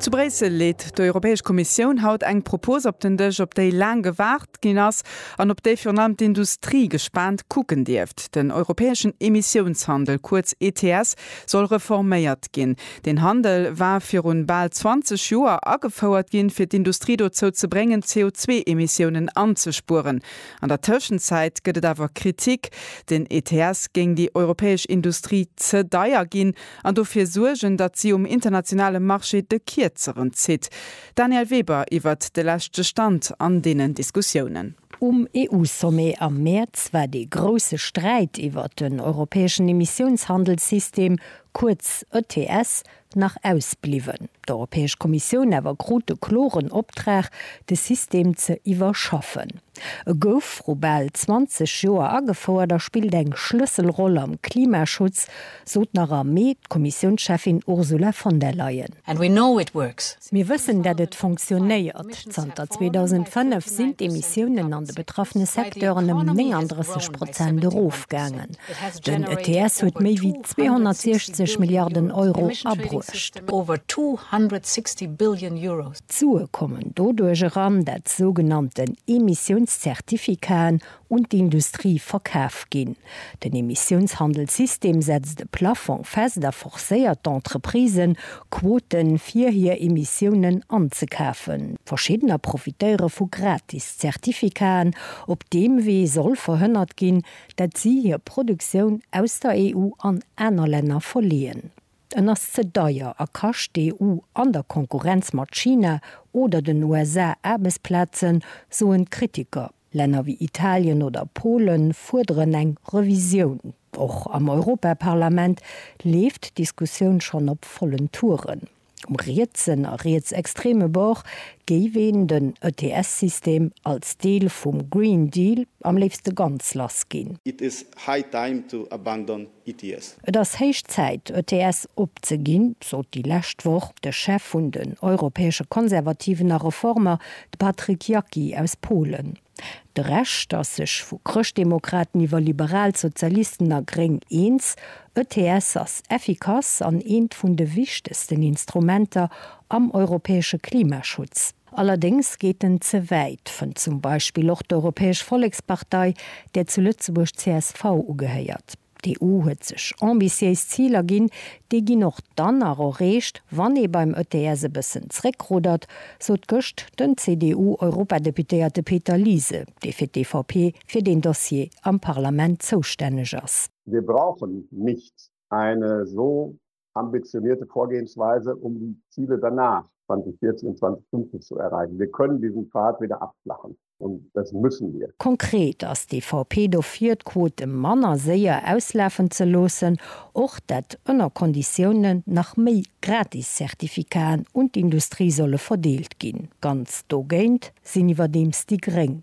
Zu Bréissel leet d'Europäesch Kommissioun haut eng Propos op den Dësch, op déi laang gewaart ginn ass an op déi virun allem d'Industrie gespaant kucken dierft. Den europäeschen Emissiounshandel, kuerz ETS, soll reforméiert ginn. Deen Handel war viru bal 20 Joer agefouert ginn, fir d'Industrie dozou ze bréngen, d'CO2-Emissiounen anzespueren. An der Tëschenzäit gëtt et awer Kritik, den ETS géing déi europäesch Industrie ze deier ginn an dofir suergen, datt si um internationale Marché de Kierzeren zitt. Danièle Weber iwwert de leschte Stand an deenen Diskussiounen. Um EU-Sommet am Mäerz war dee grousse Sträit iwwert den europäeschen Emissiounshandelssystem, kuerz ETS, nach ausbliwwen. D'Europäesch Kommissioun awer krut de kloren Optrag, de System ze iwwerschaffen. E gouf vru bal 20 Joer agefouert a spillt eng Schlësselroll am Klimaschutz, sot nach am Mee d'Kommissiounscheffin Ursula von der Leyen. Mir wëssen, datt et fonctionnéiert. Zanter 2005 sinn d'Emissiounen an de betraffene Secteuren ëm 39 Prozent erofgaangen. Den ETS huet méi wéi 260 Milliarden Euro abruecht. D'Sue kommen doduerch eran, dat d'sougenannten Emissiounscertificaten un d'Industrie verkaf ginn. Den Emissiounshandelssystem setzt e Plafong fest a forcéiert d'Entreprisen, Quoten fir hir Emissiounen anzekafen. Verschiddener profitéiere vu gratis Certificaten. Op deem Wee soll verhënnert ginn, dat si hir Produktioun aus der EU an aner Länner verleeën. En ass ze deier a kascht d'EU an der Konkurrenz mat China oder den USA Aarbechtsplazen, soen d'Kritiker. Länner wéi Italien oder Pole fuerderen eng Revisioun. Och am Europaparlament leeft d'Diskussioun schonn op vollen Touren. Um rietsen a rietsextreme Bord géif een den ETS-System als Deel vum Green Deal am léifste ganz lass ginn. It is high time to abandon ETS. Et ass héich Zäit, ETS opzeginn, sot déi lescht Woch de Chef vun den europäesche Konservativen a Reformer, de Patryk Jaki aus Polen. De Rescht ass sech vu Chrëschtdemokraten iwwer Liberal, Sozialisten a Gréng eens, ETS ass effikass an eent vun de wichtegsten Instrumenter am europäesche Klimaschutz. Allerdéngs geet en ze wäit, fënnt zum Beispill och d'Europäesch Vollekspartei, där zu Lëtzebuerg csv ugehéiert. D'EU huet sech ambitiéis Ziler ginn, déi ginn och dann nach erreecht, wann ee beim ETS e bëssen zréckruddert, sot gëscht den CDU-Europadeputéierte Peter Liese, dee fir d'EVP fir deen Dossier am Parlament zoustänneg ass. Wir brauchen nicht eine so ambitionierte Vorgehensweise, um die Ziele danach 2014 und 2050 zu erreichen. Wir können diesen Pfad wieder abflachen, und das müssen wir. Konkret ass d'EVP dofir, d'Quote manner séier auslafen ze loossen, och dat ënner Konditiounen nach méi Gratis-Zertifikaten un d'Industrie solle verdeelt ginn. Ganz dogéint sinn iwwerdeems déi Gréng.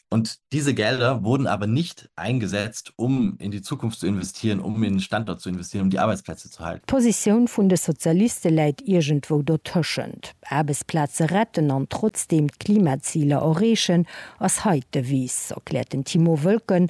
Und diese Gelder wurden aber nicht eingesetzt, um in die Zukunft zu investieren, um in den Standort zu investieren, um die Arbeitsplätze zu halten. D'Positioun vun de Sozialiste läit iergendwou dotëschent. Aarbechtsplaze retten an trotzdeem d'Klimaziler erreechen, ass hei d'Devise, erkläert den Timo Wölken,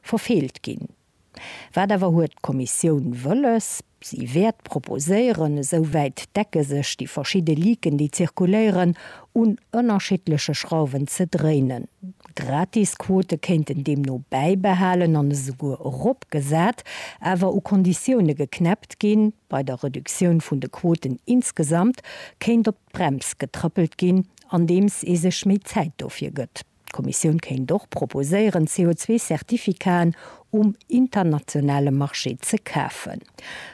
Verfeelt ginn. Wat awer huet d'Kommissioun wëlles? Si wäert proposéieren, esou wäit d'Decke sech déi verschidde Leaken, déi zirkuléieren, un ënnerschiddleche Schrauwen ze dréinen. Gratisquote kéinten deemno bäibehalen an esouguer eropgesat, awer u Konditioune geknäppt ginn. Bei der Reduktioun vun de Quoten insgesamt kéint op d'Brems getrëppelt ginn, andeems ee sech méi Zäit dofir gëtt. D'Kommissioun kéint och proposéieren, CO2-Certificaten um internationale Marché ze kafen.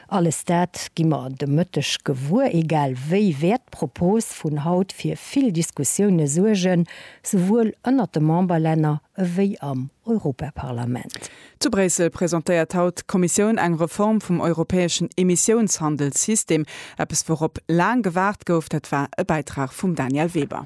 Alles dat gi mer de Mëtteg gewuer. Egal wéi wäert d'Propos vun haut fir vill Diskussioune suergen, souwuel ënnert de Memberlänner ewéi am Europaparlament. Zu Bréissel presentéiert haut d'Kommissioun eng Reform vum europäeschen Emissiounshandelssystem. Eppes wourop laang gewaart gouf, dat war e Bäitrag vum Daniel Weber.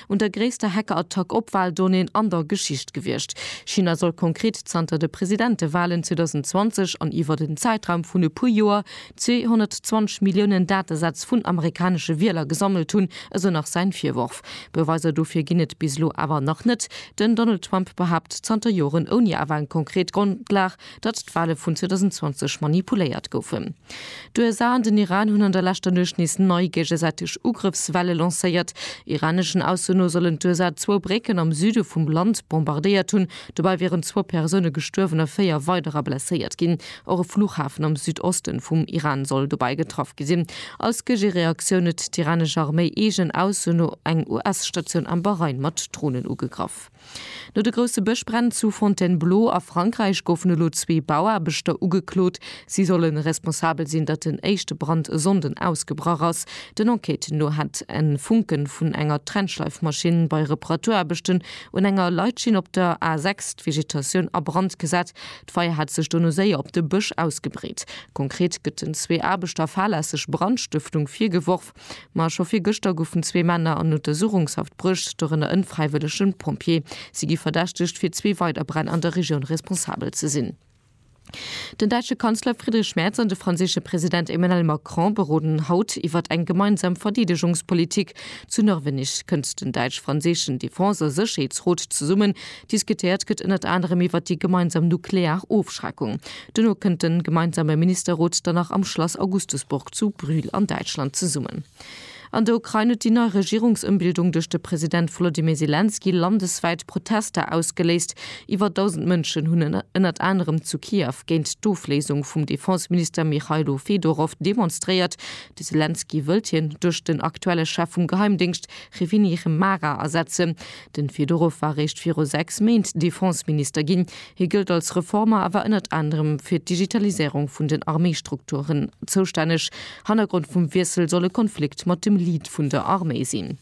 un der gréisster Hackerattack op Waldonnéen an der Geschicht gewiescht. China soll konkret zanter de Presidentewalen 2020 an iwwert en Zäitraum vun e puer Joer 220 Milliounen Datesätz vun amerikanesche Wieler gesammelt hunn, esou nach säin Virworf. Beweiser dofir ginn et bis elo awer nach net. Den Donald Trump behaapt zanter Joren ouni awer eng konkret Grondlag, datt d'Wale vun 2020 manipuléiert goufen. D'USA an den Iran hunn an der leschter Nuecht nees nei géigesäiteg Ugrëffswelle lancéiert. Iraneschen Ausso no sollen d'USA zwou Brécken am Süde vum Land bombardéiert hunn. Dobäi wieren zwou Persoune gestuerwen a véier weiderer blesséiert ginn. Och e Fluchhafen am Südoste vum Iran soll dobäi getraff gi sinn. Als Géigereaktioun huet d'iranesch Arméi eegen Ausso no eng US-Statioun am Bahrain mat Dronen ugegraff. No de grousse Bëschbränn zu Fontainebleau a Frankräich goufen elo zwee Bauaarbechter ugeklot. Si solle responsabel sinn, datt den éischte Brand e Sonnden ausgebrach ass. Den Enquêten no hätt e Funke vun enger Trennschleifmaschinn bei Reparaturaarbechten un enger Leitschinn op der A 6 d'Vegetatioun a Brand gesat. D'Feier hätt sech dono séier op de Bësch ausgebreet. Konkret gëtt den zwee Aarbechter fahrlässeg Brandstëftung virgeworf. Ma scho vir gëschter goufen zwee Männer an Untersuchungshaft bruecht, dorënner en fräiwëllegen Pompjee. Si gi verdächtegt fir zwee weider Bränn an der Regioun responsabel ze sinn. Den däitsche Kanzler Friedrich Merz an de franséische President Emmanuel Macron beroden haut iwwert eng gemeinsam Verdeedegungspolitik. Zu Norwenneg kënnt den däitsch-franséischen Defense a Sécherheetsrot zesummen. Diskutéiert gëtt ënnert anerem iwwert déi gemeinsam nuklear Ofschreckung. Duerno kënnt de gemeinsame Ministerrot dann nach am Schlass Augustusburg zu Brühl an Däitschland zesummen. An der Ukrain huet déi nei Regierungsëmbildung duerch de President Volodymyr Selenskyj landeswäit Protester ausgeléist. Iwwer 1.000 Mënschen hunn ënnert anerem zu Kiew géint d'Ofléisung vum Defenseminister Mychailo Fedorow demonstréiert. De Selenskyj wëllt hien duerch den aktuelle Chef vum Geheimdéngscht Reviniy Rymara ersetzen. Den Fedorow war réischt viru 6 Méint Defenseminister ginn. Hie gëllt als Reformer a war ënnert anerem fir d'Digitalisierung vun den Arméistrukturen zoustänneg. Hannergrond vum Wiessel soll e Konflikt mat dem Lead vun der Arméi sinn.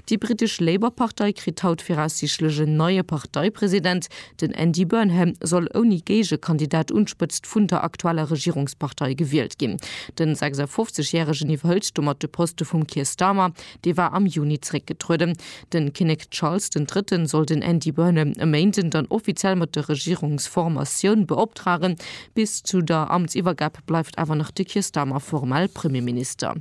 Déi britesch Labour-Partei kritt haut viraussiichtlech en neie Parteipresident. Den Andy Burnham soll ouni Géigekandidat un d'Spëtzt vun der aktueller Regierungspartei gewielt ginn. Den 56 Järegen iwwerhëlt domat de Poste vum Keir Starmer. Dee war am Juni zeréckgetrueden. De Kinnek Charles den Drëtten soll den Andy Burnham e Méinden dann offiziell mat der Regierungsformatioun beoptragen. Bis zu der Amtsiwwergab bleift awer nach de Keir Starmer formell Premierminister.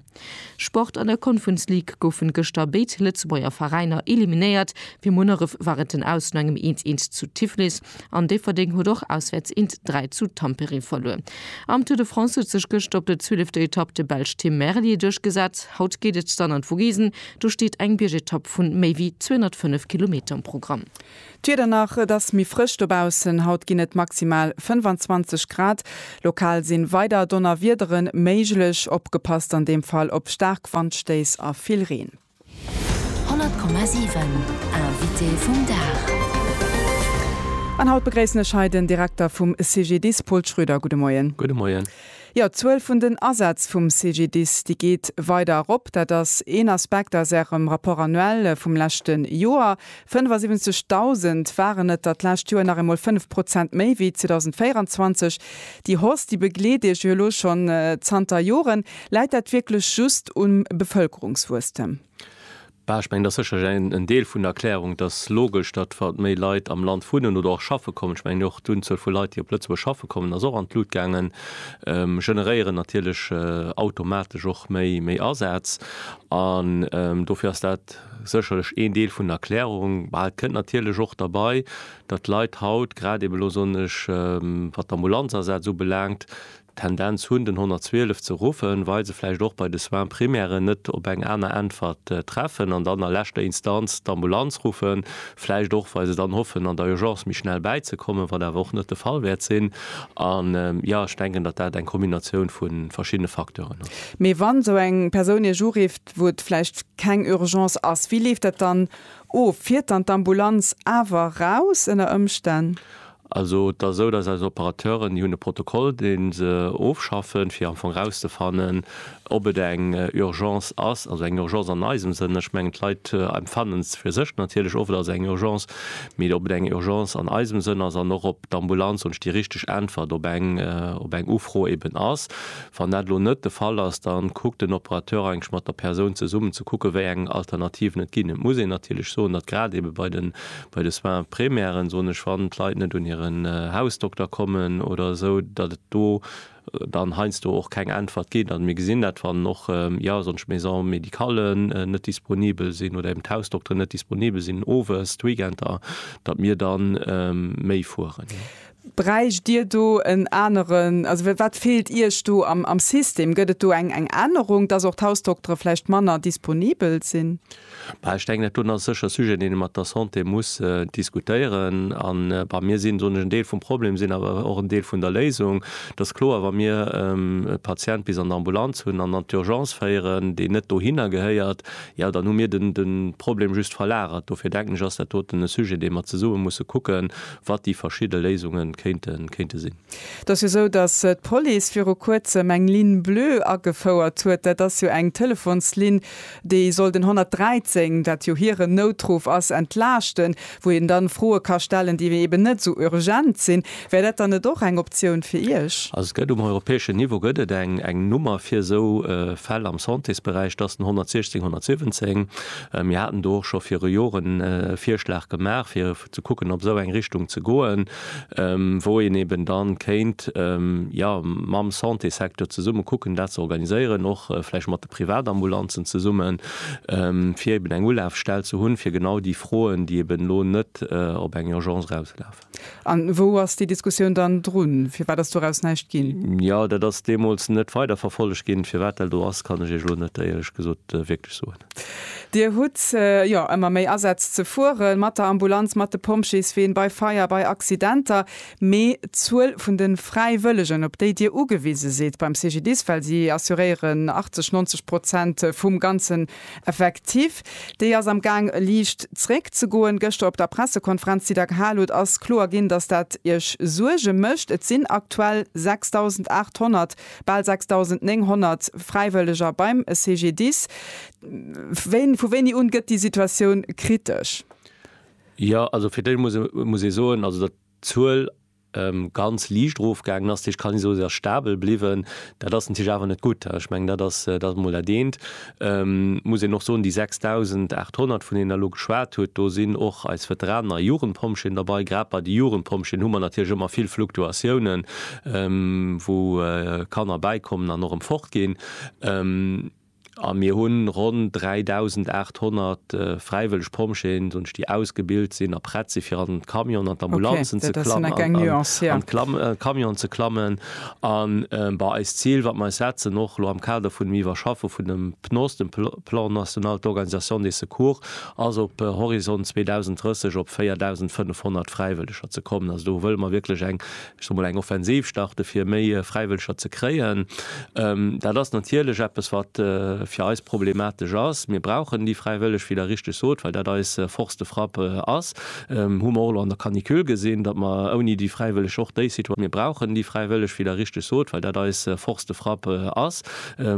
Sport, An der Conference League goufen gëschter béid Lëtzebuerger Veräiner eliminéiert. Fir Munneref war et den Aus no engem eens-eens zu Tiflis. an Déifferdeng huet och auswäerts int 3 zu Tampere verluer. Am Tour de France huet sech gëschter op der zwielefter Etapp de Belsch Tim Merlier duerchgesat. Haut geet et dann an d'Vogesen, do steet eng Biergetapp vu méi wéi 205 Kilometer um Programm. D'Wieder nach, et ass méi frësch dobaussen. Haut ginn et maximal 25 Grad. Lokal si weider Donnerwiedere méiglech, opgepasst an deem Fall op staark Wandstéiss a vill Reen. 100,7 Invité vum Dag. An haut begréissen ech hei den Direkter vum CGDIS, Paul Schröder. Gudde Moien. Gudde Moien. Jo, d'Zuel vun den Asätz vum CGDIS, déi geet weider erop. Dat ass een Aspekt aus Ärem Rapport annuel vum leschte Joer. 75.000 waren et der d'lescht Joer, nach eemol 5 Prozent méi wéi 2024. Déi Hausse, déi begleet Iech jo elo schonn zanter Joren. Läit dat wierklech just um Bevëlkerungswuesstem? Bah, ech mengen, dat ass sécherlech en Deel vun der Erklärung. Et ass logesch, datt wat méi Leit am Land wunnen oder och schaffe kommen, ech mengen och d'Unzuel vu Leit, déi op Lëtzebuerg schaffe kommen, ass och an d'Lut gaangen, generéieren natierlech automatesch och méi Asaz. An dofir ass dat. Sécherlech een Deel vun der Erklärung. Mä et kënnt natierlech och derbei, datt d'Leit haut, grad eben elo soen ech, wat d'Ambulanzasaz ubelaangt, d'Tendenz hunn den 112 ze ruffen, well se vläicht och bei de Soins primairen net op eng aner Äntwert treffen an dann a leschter Instanz d'Ambulanz ruffen, vläicht och well se dann hoffen an der Urgence méi schnell bäizekommen, wat awer och net de Fall wäert sinn. A jo, ech denken, datt dat eng Kombinatioun vu verschiddene Facteuren ass. Mee wann esou eng Persoun Iech urifft, wou et vläicht keng Urgence ass, wéi leeft dat dann of? Fiert dann d'Ambulanz awer raus ënner Ëmstänn? Also et ass esou, datt eis Operateuren, déi hunn e Protokoll, dee se ofschaffen, fir am Fong rauszefannen, ob et eng Urgence ass, also eng Urgence an eisem Sënn, ech mengen d'Leit empfannen et fir sech natierlech of, et ass eng Urgence, mee ob et eng Urgence an eisem Sënn ass an och ob d'Ambulanz wunsch déi richteg Äntwert op eng Ufro eeben ass, Wann dat elo net de Fall ass, da kuckt den Operateur eigentlech mat der Persoun zesummen ze kucken, wéi eng Alternativen et ginn. Et muss een natierlech soen, datt grad eebe bei de, bei de Soins primaires, soen ech, wann d'Leit net un hiren Hausdokter kommen oder esou, datt et do dann heiansdo och keng Äntwert ginn. Also mir gesinn dat, wann och, jo, soen ech, d'Maisons médicales net disponibel sinn oder eeben d'Hausdokteren net disponibel sinn owes, d'Weekender, datt mir da méi fueren. Bräicht Dir do en aneren, also wat feelt Iech do am System? Gëtt et do eng Ännerung, dass och d'Hausdoktere vläicht manner disponibel sinn? Ech denken, dat do ass sécher e Sujet, deen ee mat der Santé muss diskutéieren. An mir sinn, soen ech, en Deel vum Problem, sinn awer och en Deel vun der Léisung. Et ass kloer, wa mir e Patient bis an d'Ambulanz hunn an an d'Urgence féieren, deen net dohinner gehéiert, jo dann hu mir de Problem just verlagert. Dofir denken ech, ass dat doten e Sujet, dee mer zesumme musse kucken, wat déi verschidde Léisunge kéinte sinn. Et ass jo esou, datt d'Police viru Kuerzem eng Ligne bleue agefouert huet. Dat ass jo eng Telefonslinn, déi soll den 113, wat jo hiren Noutruff ass, entlaaschten, wou een da Froe ka stellen, déi eeben net esou urgent sinn. Wär dat dann net och eng Optioun fir Iech? Also et gëtt um europäeschen Niveau gëtt et eng Nummer fir esou Fäll am Santésberäich, dat ass den 116 117. Mir haten do och scho viru Joren e Virschlag gemaach, fir ze kucken op esou eng Richtung ze goen, wou een eben da kéint jo mam Santésecteur zesumme kucken dat ze organiséieren, och vläicht mat de Privatambulanzen zesummen, fir eben eng Ulafstell ze hunn, fir genau déi Froen, déi eben elo net op eng Urgence erauslafen. A wou ass déi Diskussioun dann drun? Firwat ass doraus näischt ginn? Jo, dat ass deemools net weiderverfollegt ginn. Firwat dat elo ass, kann ech Iech elo net, éierlech gesot, wierklech soen. Dir hutt jo ëmmer méi Asätz ze fueren, mat der Ambulanz, mat de Pompjeesween, bei Feier, bei Accidenter. Mee d'Zuel vun de Fräiwëllegen, op déi Dir ugewise sidd beim CGDIS, well si assuréieren 80, 90 Prozent vum ganzen Effektif, déi ass am Gaang liicht zréck ze goen. Gëschter op der Pressekonferenz, déi Der gehal hutt, ass kloer ginn, dass dat Iech Suerge mécht. Et sinn aktuell 6.800, Bal 6.900 Fräiwëlleger beim CGDIS. Wéini, vu wéini un gëtt déi Situatioun kritesch? Jo, also fir d'Éischt muss ee, muss ee soen, also datt d'Zuel ganz liicht erofgaangen ass, dat heescht, kann ee soen, se ass stabel bliwwen. Dat ass natierlech awer net gutt. Ech mengen, dat ass, dat ass emol dat eent. Muss een och soen, déi 6.800, vun deenen Der elo geschwat hutt, do sinn och eis Veteraner Jugendpompjeeën derbei. Grad bei de Jugendpompjeeën hu mer natierlech ëmmer vill Fluktuatiounen, wou Kanner bäikommen an och erëm fortginn. A mir hu ronn 3.800 fräiwëlleg Pompjeeën, soen ech, déi ausgebilt sinn a prett si fir an d'Camionen, an d'Ambulanzen ze klammen, an d'Camionen ze klammen. A bei eist Zil, wat mer eis setzen, och elo am Kader vun dem Iwwerschaffe vun dem PNOS, dem Plan national d'organisation des secours, ass op Horizont 2030 op 4.500 Fräiwëlleger ze kommen. Also do wëlle mer wierklech eng, ech soe mol, eng Offensiv starten, fir méi Fräiwëlleger ze kréien. Dat ass natierlech eppes, wat fir eis problematesch ass. Mir brauchen déi Fräiwëlleg, wéi Der richtig sot, well dat eis Force de frappe ass. Hu mer och elo an der Canicule gesinn, datt mer ouni déi Fräiwëlleg och déi Situatioun, mir brauchen déi Fräiwëlleg, wéi Der richtig sot, well dat eis Force de frappe ass.